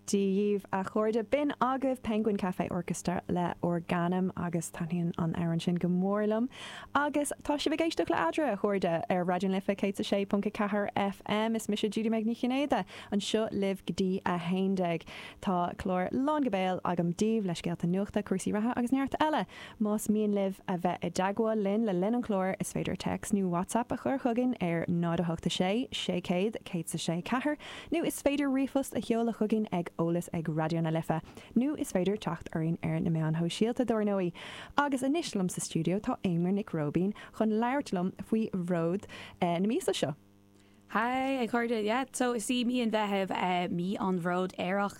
Dia dhíbh, a chairde. B'in agaibh Penguin Cafe Orchestra le Organum agus taitníonn an amhrán sin go mór liom. Agus tá sibh ag éisteacht le Eadra, a chairde, ar Raidió na Life 106.4 FM. Is mise Judy Meg Ní Chinnéide, anseo libh go dtí a haon déag. Tá clár lán go béal agam daoibh, le scéalta nuachta, cúrsaí reatha agus neart eile. Más mian libh a bheith i dteagmháil linn le linn an chláir, is féidir text nó WhatsApp a chur chugainn ar 0 8 6 600 106 4. Nó is féidir ríomhphost a sheoladh chugainn ag eolas ag Raidió na Life. Nó is féidir teacht orainn ar na meáin shóisialta, dar ndóigh. Agus anois liom sa stiúideo tá Éimear Nic Róibín chun labhairt liom faoi Bhród na míosa seo. Haigh a chairde, yeah, so is í mí an Mheithimh mí an Bhróid Aerach.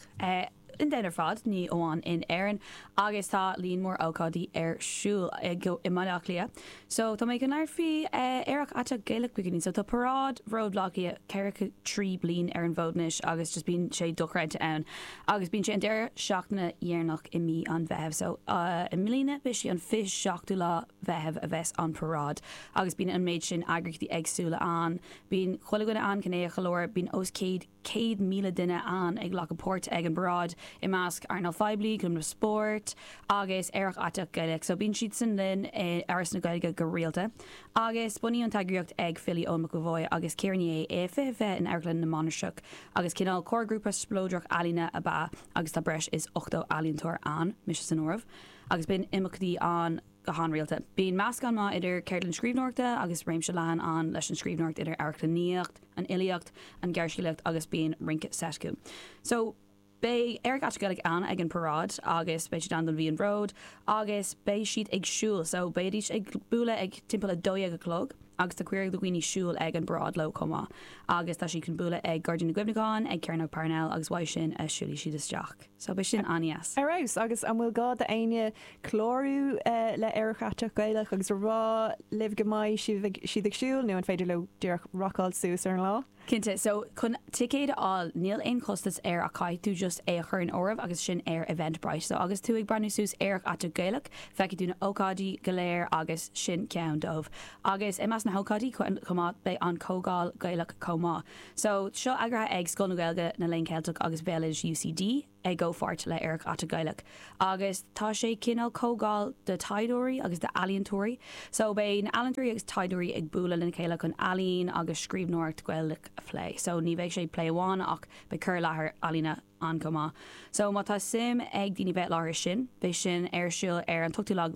domhan ar fad, ní amháin in Éirinn, agus tá líon mór ócáidí ar siúl i mBaile Átha Cliath so tá mé go n-airtfí Aerach Aiteach Gaelach againne so tá paráid Bród Bhaile Átha Cliath 43 bliain ar an bhfód anois agus just bíonn sé dochreidte ann agus bíonn sé an deireadh seachtaine dheireanach i mí an Mheithimh so i mbliana beidh sé an 27ú lá Mheithimh a bheas an paráid agus bíonn an méid sin eagraíochtaí eagsúla ann bíonn chuile dhuine ann cineál go leor bíonn os céad céad míle duine ann ag glacadh páirt ag an bparáid, i measc earnáil phoiblí, clubanna spóirt agus Aerach Aiteach Gaelach so bíonn siadsan linn i Áras na Gaeilge go rialta agus bunaíodh an t-eagraíocht ag filí Eoin McEvoy agus Ciara Ní É i 2020 in Amharclann na Mainistreach agus cineál comharghrúpa spleodrach ealaíne ab ea agus tá breis is 80 ealaíontóir ann, mise san áireamh, agus bíonn imeachtaí ann go han-rialta. Bíonn meascán maith idir ceardlann scríbhneoireachta agus réimse leathan ann leis an scríbhneoireacht idir amharclannaíocht, an fhilíocht, an ghearrscéalaíocht agus bíonn rince seit acu. So, beidh Aerach Aiteach Gaelach ann ag an paráid agus beidh siad ann don mhí an Bhróid agus beidh siad ag siúl so beidís ag bualadh ag timpeall a dó dhéag a chlog agus tá cuireadh do dhaoine siúl ag an bparáid leo chomh maith agus tá siad chun bualadh ag Gairdín na gCuimhneachán, ag Cearnóg Parnell agus uaidh sin a siúlfaidh siad isteach. So beidh sin an-deas. Ar fheabhas! Agus an bhfuil gá do éinne clárú le Aerach Aiteach Gaelach agus a rá libh go mbeidh siad ag siúl nó an féidir leo díreach rocáil suas ar an lá? Cinnte, so chun ticéid a fháil níl aon chostas air ach caithfidh tú just é a chur in áireamh agus sin ar Eventbrite. So agus tú ag breathnú suas Aerach Aiteach Gaelach feicfidh tú na ócáidí go léir agus sin ceann dóibh. Agus i measc na hócáidí chomh maith beidh an Comhdháil Gaelach chomh maith. So seo eagraithe ag Scoil na Gaeilge, na Léinn Ceilteach agus Bhéaloidis UCD. i gcomhpháirt le Aerach Aiteach Gaelach agus tá sé cineál comhdháil do thaighdeoirí agus d'ealaíontóirí. So beidh na ealaíontóirí agus taighdeoirí ag bualadh lena chéile chun ealaín agus scríbhneoireacht Gaelach a phlé. So ní bheidh sé plé amháin ach beidh cur i láthair ealaíne ann chomh maith. So má tá suim ag daoine bheith i láthair sin beidh sin ar siúl ar an t-ochtú lá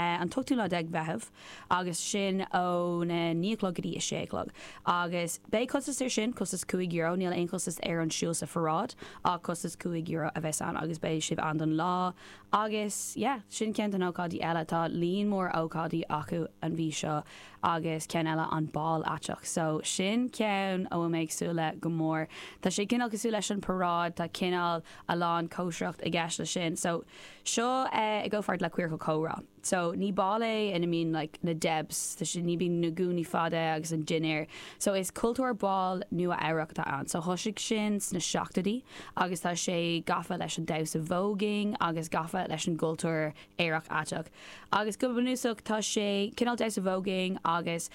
an t-ochtú lá déag Mheitheamh. agus sin óna naoi a chlog go dtí a sé a chlog. Agus beidh costas ar sin, costas cúig euro, níl aon chostas ar an siúl sa pharáid ach costas cúig euro a bheas ann agus beidh sibh ann don lá agus yeah, sin ceann den ócáid eile. Tá líon mór ócáidí acu an mhí seo agus ceann eile an Bál Aiteach so sin ceann a bhfuil mé ag súil le go mór. Tá sé cineál cosúil leis an paráid, tá cineál a lán cóisireacht i gceist le sin so seo i gcomhpháirt le Queercal Comhrá. So ní ball é ina mbíonn like na Debs tá sé ní bíonn na gúnaí fada agus an dinnéar. So is cultúr bál Nua Eabhrac atá ann. So thoisigh sin sna seachtoidí agus tá sé gafa leis an damhsa voguing agus gafa leis an gcultúr aerach aiteach. Agus go bunúsach tá sé cineál damhsa voguing agus.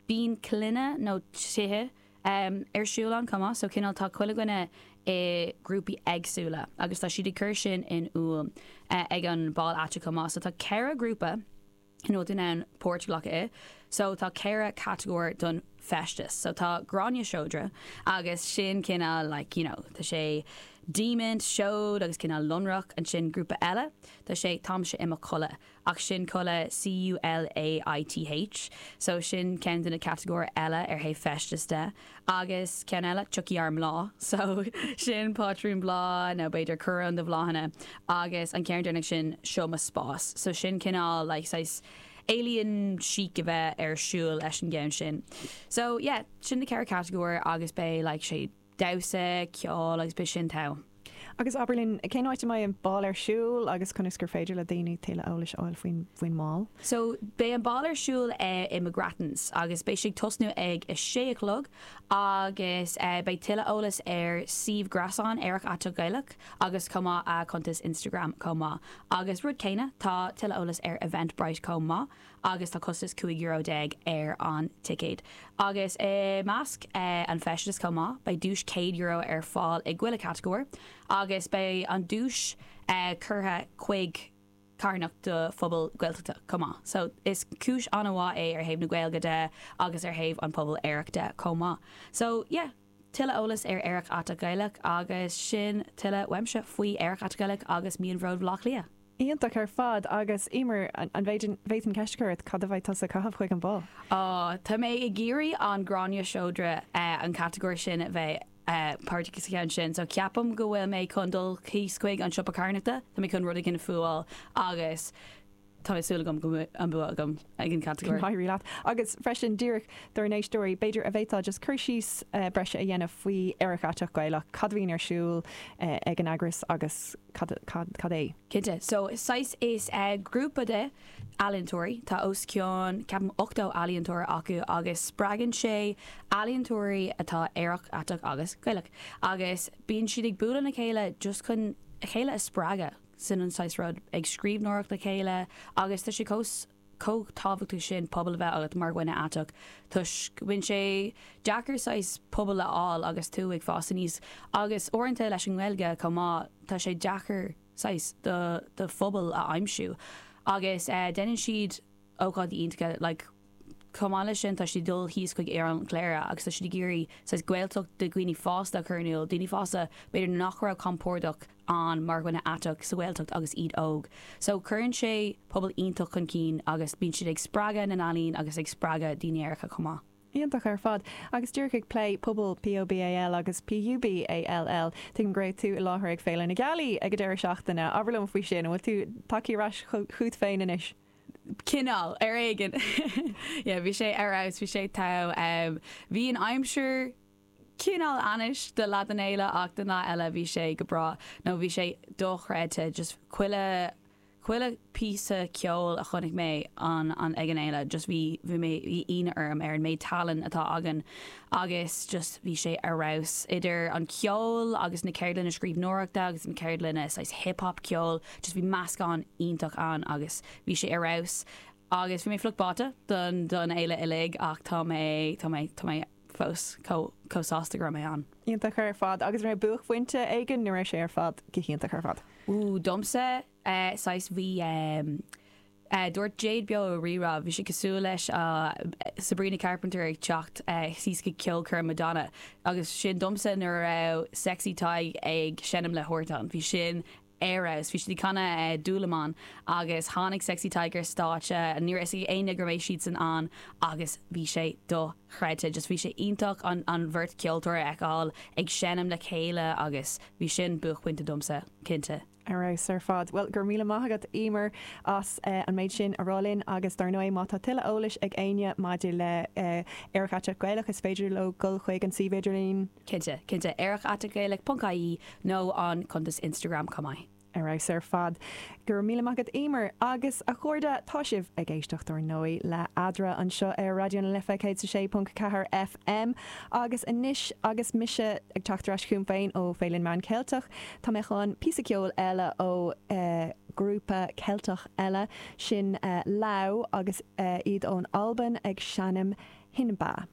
Bíonn coileanna nó tithe ar siúl ann chomh maith, so cineál tá chuile dhuine i grúpaí éagsúla agus tá siad ag cur sin in iúl ag an bál aiteach chomh maith. So tá ceithre ghrúpa in iúl dúinn ann páirt a ghlacadh i. So tá ceithre catagóir don feisteas. So tá Gráinne Seodra agus sin cineál like you know tá sé diamaint, seod agus cineál lonrach. Ansin grúpa eile tá sé táimse i mo chulaith. Ach sin culaith C-U-L-A-I-T-H, so sin ceann de na catagóir eile ar thaobh feistis de. Agus ceann eile, tiocfaidh ár mbláth, so sin pátrún bláth nó b'fhéidir coróin de bhláthanna. Agus an ceann deireanach sin, seo mo spás, so sin cineál like saghas alien chic a bheith ar siúl leis an gceann sin. So yeah, sin na ceithre catagóir agus beidh like sé, damhsa, ceol agus b'shin togha. Agus abair linn, cén áit a mbeidh an bál ar siúl agus conas gur féidir le daoine tuilleadh eolais a fháil faoin mbál? So, beidh an bál ar siúl i McGrattans agus beidh sé ag tosnú ag a sé a chlog agus beidh tuilleadh eolas ar suíomh gréasáin Aerach Aiteach Gaelach agus chomh maith a cuntas Instagram chomh maith. Agus rud céanna, tá tuilleadh eolas ar Eventbrite chomh maith. agus tá costas cúig euro déag ar an ticéad agus i measc an feisteas chomh maith beidh duais céad euro ar fáil i chuile catagóir agus beidh an duais curtha chuig carthanacht do phobal Gaeltachta chomh maith so is cúis an-mhaith é ar thaobh na Gaeilge de agus ar thaobh an pobal aerach de chomh maith so yeah. Tuilleadh eolas ar Aerach Aiteach Gaelach agus sin tuilleadh uaimse faoi Aerach Aiteach Gaelach agus Mí an Bhróid Bhleá Cliath. Iontach ar fad agus Eimear an bhféadfainn ceist a chur ort, cad a bheidh tusa ag caitheamh chuig an bál? Oh, tá mé ag iarraidh an Gráinne Seodra an catagóir sin a bheith páirteach sa cheann sin so ceapaim go bhfuil mé chun dul chuig an siopa carthanachta, tá mé chun rud éigin a fuáil agus Tá súil agam go mbeidh an bua agam ag an catagóir. Éirí leat. Agus freisin díreach dár n-éisteoirí, b'fhéidir an bhféadfá just cur síos breise a dhéanamh faoi Aerach Aiteach Gaelach, cad a bhíonn ar siúl ag an eagras agus cad é? Cinnte. So saghas, is grúpa de ealaíontóirí, tá os cionn ceapaim 80 ealaíontóir acu agus spreagann sé ealaíontóirí atá aerach, aiteach agus Gaelach agus bíonn siad ag bualadh le chéile just chun a chéile a spreagadh. sin an saghas rud, ag scríbhneoireacht le chéile agus tá sé chomh tábhachtach sin pobal a bheith agat mar dhuine aiteach toisc bíonn sé deacair saghas pobal a fháil agus tú ag fás aníos agus uaireanta leis an nGaeilge chomh maith tá sé deacair saghas do phobal a aimsiú agus déanann siad ócáidí iontacha like Chomh maith leis sin, tá siad ag dul thíos chuig oileán Chléire agus tá siad ag iarraidh saghas Gaeltacht do dhaoine fásta a chur in iúl, daoine fásta b'fhéidir nach raibh compordach ann mar dhuine aiteach sa Ghaeltacht agus iad óg. So cuireann sé pobal iontach chun cinn agus bíonn siad ag spreagadh na n-ealaíon agus ag spreagadh daoine aeracha chomh maith. Iontach ar fad. Agus díreach ag plé pobal POBAL agus PUBALL, tuigim go raibh tú i láthair ag Féile na Gealaí ag an deireadh seachtaine. Abair liom faoi sin, an bhfuil tú tagtha ar ais chugat féin anois? cineál, ar éigin. Yeah, bhí sé ar fheabhas, bhí sé togha. em, bhí an aimsir cineál ainnis do leath den fhéile ach den leath eile bhí sé go breá nó bhí sé dochreidte just chuile, chuile phíosa ceoil a chonaic mé an, an, ag an fhéile just bhí, bhí mé, bhí ionadh orm ar an méid tallann atá againn agus just bhí sé ar fheabhas. Idir an ceol agus na ceardlanna scríbhneoireachta agus na ceardlanna saghas hip hop ceol, Just bhí meascán iontach ann agus bhí sé ar fheabhas agus bhí mé fliuch báite don fhéile uilig ach tá mé tá mé tá mé fós chomh sásta go raibh mé ann. Iontach ar fad agus raibh buaicphointe éigin nó raibh sé ar fad go hiontach ar fad? Ooh domsa saghas bhí dúirt Jade beo ar Rí-Rá bhí sé cosúil leis Sabrina Carpenter ag teacht síos go ceolchoirm Madonna agus sin domsa nuair a raibh Sexy Tadhg ag seinm le Huartan bhí sin ar fheabhas bhí siad ag canadh Dúlamán agus tháinig Sexy Tadhg ar stáitse ní raibh fhios ag éinne go mbeidh siadsan ann agus bhí sé dochreidte just bhí sé iontach an an bheirt ceoltóir a fheiceáil ag seinm le chéile agus bhí sin buaicphointe domsa cinnte. Ar fheabhas ar fad. Bhuel, go raibh míle maith agat Éimear as an méid sin a rá linn agus dár ndóigh má tá tuilleadh eolais ag éinne maidir le Aerach Aiteach Gaelach is féidir leo dul chuig an suíomh idirlín, Cinnte, cinnte. Aerach at gaelic ponc ie nó an cuntas Instagram chomh maith. Ar fheabhas ar fad. Go raibh míle maith agat Éimear. Agus, a chairde, tá sibh ag éisteacht, ar ndóigh, le Eadra anseo ar Raidió na Life 106.4 FM. Agus anois, agus mise ag teacht ar ais chugam féin ó Féile na Meán Ceilteach, tá mé chun píosa ceoil eile ó ghrúpa Ceilteach eile, sin Lau agus iad ón Albain ag seinm Hinba.